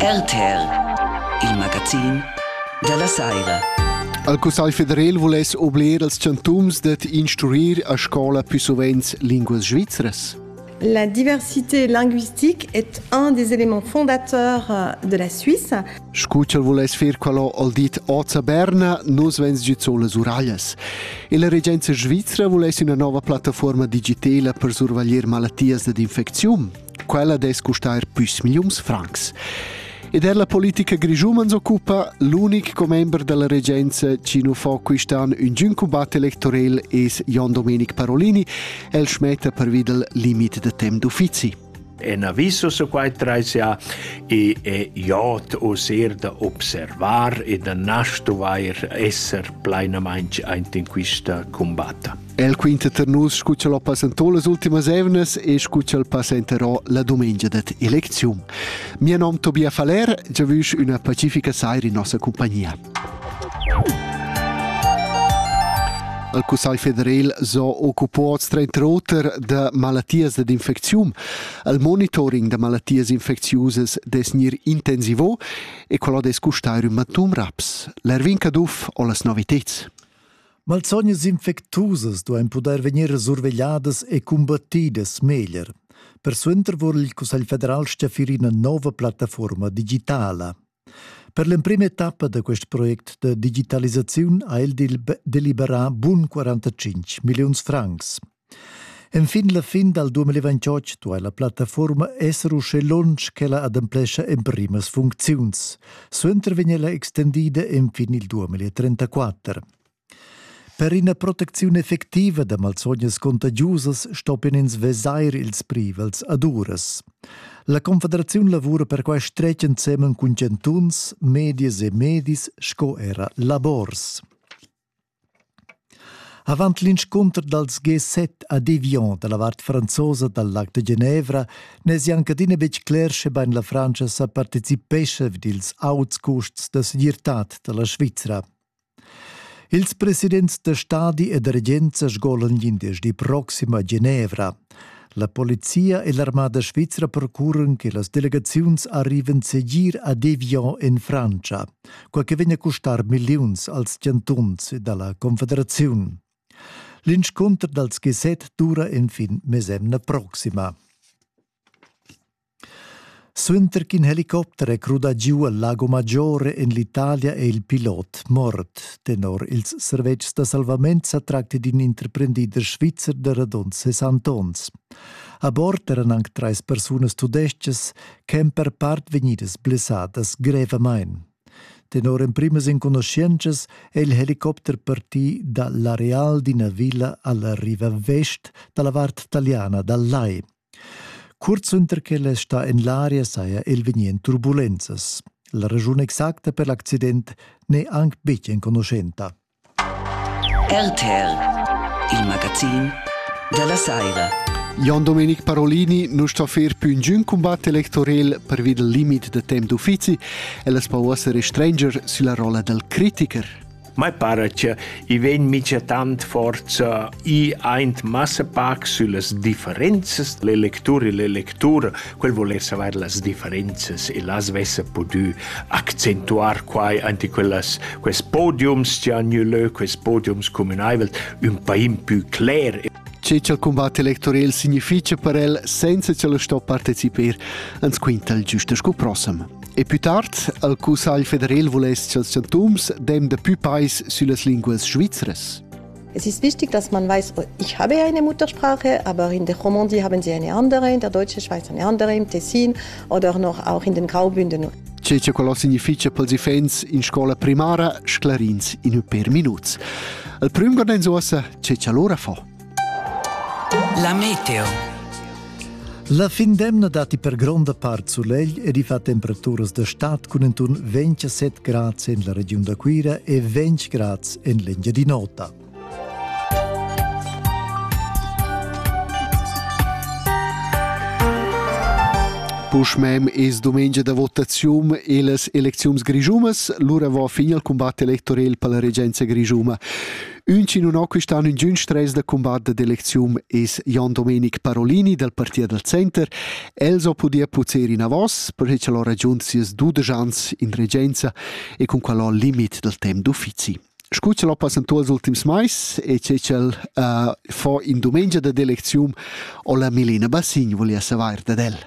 RTL, il magazin dalla saira. Al Cussagl federal vuless oblir als chantuns dad instruir a scola più sovent linguas svizras? La diversité linguistique est un des éléments fondateurs euh, de la Suisse. Scuccial vuless fer quello al dit Oza Berna, nos vens giu solas uraias. E la regenza svizra vuless una nova plattaforma digitala per survaglier malattias dad infeczium? Quella dess custar püs milliuns francs. Ed er la politica grischumans occupa l'unic commember della regenza Cino fa quist'an un giun combat electorel es Jon Domenic Parolini, el schmetta per videl limit de temp d'uffizi. En aviso su quai traisia e e jot osir da observar e da nastuvair esser plainamainch aint in quista combatta. El quinta tar nus scu ch'el ho passantò las ultimas evnas e scu ch'el passenterò la dumengia dat elecziun. Mia nom Tobias Faller, giavüsch üna pacifica saira in nossa compagnia. Il Cussagl federal so occupads trenta oter da malattias dad infeczium. Il monitoring da malattias infecziusas des nir intensivo e quello des custairum matum raps. L'Erwin Caduff ho las noviteds. Malsognas infectusas duain pudair vegnir survegliadas e cumbattidas meglier. Persuenter vul il Cussegl federal stafir ina nova plattaforma digitala. Per l'emprima etappa da quest project da digitalisaziun ha el deliberà bun 45 milliuns francs. Enfin la fin dal 2028 duai la plattafuorma esser uschè lunsch ch'ella ademplescha emprimas funcziuns. Suenter vegn ella extendida enfin il 2034. Per ina protecziun effectiva da malsognas contagiusas stoppian ins vesair ils privels ad uras. La Confederaziun lavura per quai stretg ensemen cun chantuns, medias e medis sco era labors. Avant l'inscunter dals G7 a Devion da la vart franzosa dal Lac de Genevra n'èsi anc adina betg cler schebain la Frantscha sa participescha vid ils auts custs da segirtad da la Svizra. Ils presidents da stadi e da regenza sgolan glindesdi proxim a Genevra. La polizia e l'armada svizra procuran che las delegaziuns arrivan segir a Devion en Frantscha. quai che vegn a custar milliuns als chantuns ed alla Confederaziun. L'inscunter dals G7 dura enfin mesemna proxima. Suenter ch'in helicopter è crudà giu al Lago Maggiore en l'Italia è il pilot mort. Tenor ils servetschs da salvament sa tracti d'in interprendider svizzer da radund 60 onns. A bord eran anc trais persunas tudestgas ch'èn per part vegnidas blessadas grevamain. Tenor emprimas enconuschientschas è il helicopter partì da l'areal d'ina villa alla riva vest da la vart taliana dal lai. Curt suenter ch'el è stà en l'aria saja el vegnì en turbulenzas. La raschun exacta per l'accident n'è anc betg enconuschenta. RTL, il magazin dalla saira. Jon Domenic Parolini nu sto fer pü ingün cumbat electorel pervi dal limit da temp d'uffizi e las po esser stranger sülla rolla dal critiker. Mai para che i vegn mica tant forza i aint massapac süllas differenzas l'electur e l'electura Quel voless avair las differenzas e las vessa pudü accentuar quai ante quellas, quels podiums chi han gnü lö, quels podiums cumünaivels, ün pain pü cler Che cha'l cumbat electorel significha per el senza ch'el sto partecipar, ans quinta il giusta sco prossem. E pü tard al Cussagl federal vuless cha'ls chantuns dem da pü pais süllas linguas svizras. Es ist wichtig, dass man weiß, ich habe eine Muttersprache, aber in der Romandie haben sie eine andere, in der deutschen Schweiz eine andere, im Tessin oder noch auch in den Graubünden. C'è c'è quello significa per i fans in scuola primaria sclarins in per minuti. Il primo che non usa c'è c'è l'ora fa. La meteo La fin d'emna datti per gronda part sulegl ed i fa temperaturas da stad cun inturn 27 grads en la regiun da Cuira e 20 grads en l'Engiadin'Ota. Puschmem es dumengia da votazium e las elecziuns grischumas, lura va fin al cumbat electorel per la regenza grischuma. Ünchi non ho quist'anno ingün stress da combatter d'elecziun es Jon Domenic Parolini dal Partit dal Center. El so pudia puzer inavos, perche ch'el ho ragiunt sieus dudesch ans in regenza e cun quel ho limit dal temp d'uffizi. Scu ch'el ho passantuo ils ultims mais e che ch'el uh, fa in dumengia dad elecziun, ho la Melina Bassin volia savair dad el.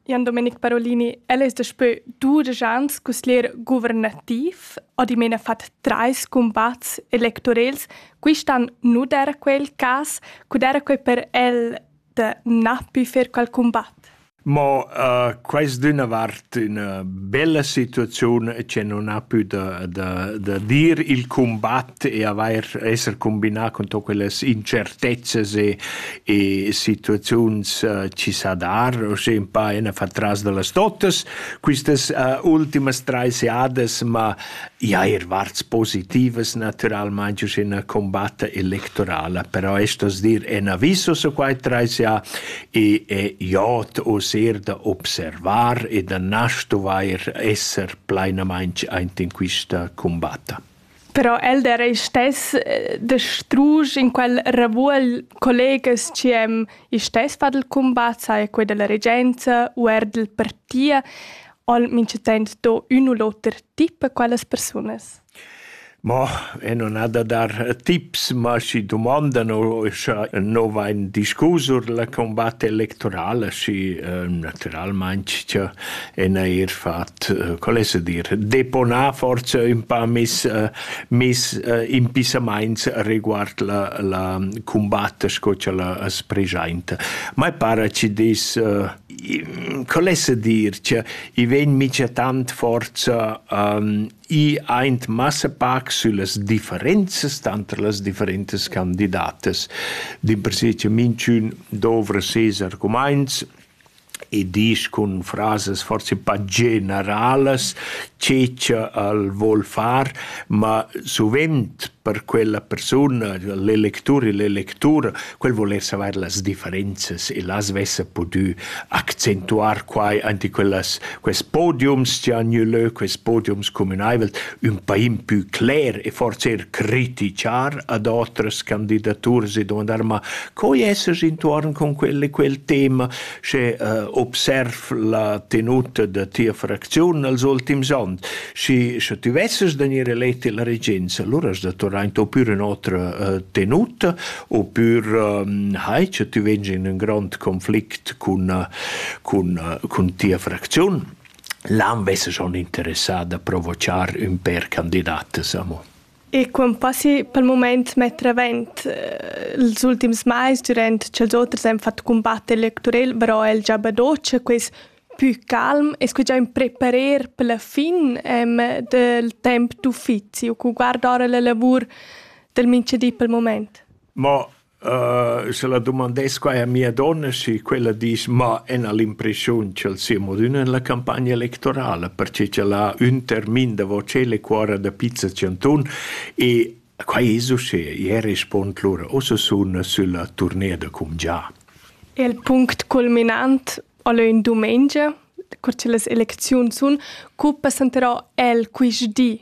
Jan Domenic Parolini, el es daspö dudesch ans cusglier guvernativ o dimena fat trais cumbats electorels. Quist'an nu d'eira quel cas. Cu d'eira quai per el da na pü fer qual cumbat? Mo uh, quaist d'üna vart üna bella situaziun che non ha pü da, da, da dir il cumbat e avair esser combinà cun tot quellas incertezzas e, e situaziuns uh, ci sa dar, o sche un pa ena fa tras de las totas, quistas uh, ultimas trais jadas, ma ja er varts positivas naturalmente sche una combatta electorala, però estos dir en aviso su quai trais ja e è jot o ser da observar e da nastuvair esser plainamente aint in quista combatta. Però el d'era ei stess da strusch in quel ravuogl collegas chi hem isch stess fat il cumbat, sai quei dalla regenza u eir dal parti, al minchatant do ün u l'oter tip a quellas persunas. Ma e non ha da dar tips, ma schi dumandan o scha no vain discus sur la combatta electorala, schi naturalmaing cha e neir fat, eh, qual es a dir, deponar forsa ün pa mis, eh, mis eh, impissamaints riguard la, la cumbatta sco cha la as preschainta. Ma para chi dis, eh, qual es a dir, che i vegn mica tant forza um, i aint massa pac süllas differenzas tanter las differentas candidatas. D'impersè che minchün dovra ses argumaints, e disch cun frasas forsa pa generalas che cha el voul far, ma suvent per quella persuna, l'electur e l'electura, quel voul eir savair las differenzas e las vessa pudü accentuar quai aint in quellas quest podiums chi han gnü lö, quest podiums cumünaivels, ün pa impü cler e forsa eir critichar ad otras candidaturas e dumandar: «Ma Co esses intuorn cun quel e quel tema sche uh, observ la tenuta da tia fracziun els ultims onns? Schi, sche ti vesses da gnir eleti la regenza, allura has da tornar in to pür in otra uh, tenuta oppür um, hai che ti veggi in un grand conflict cun, uh, cun, uh, cun tia fracziun. L'an vesse schon interessà da provochar un per candidatas amo. E quant passi pel mumaint metter avaunt ils ultims mais durant cha'ls oters han fat cumbatt electorel, però el già badoc quist pü calm e scugià ün preparer per la fin del temp d'uffizi u cu guarda ora la lavur del minchadi pel mumaint? Mo Sche la dumandess quai a mia donna, schi quella disch: «Ma ena l'impreschiun ch'el sia modün en la campagna electorala, perche ch'el ha ün termin davo tschel e cuorra da pizza tschantun e quai es uschea». Ier respond lura: «Ussa sun sülla turnea da cumgià». Il punct culminant al è ün dumengia, cur che las elecziuns sun. Co passenterà el quist di?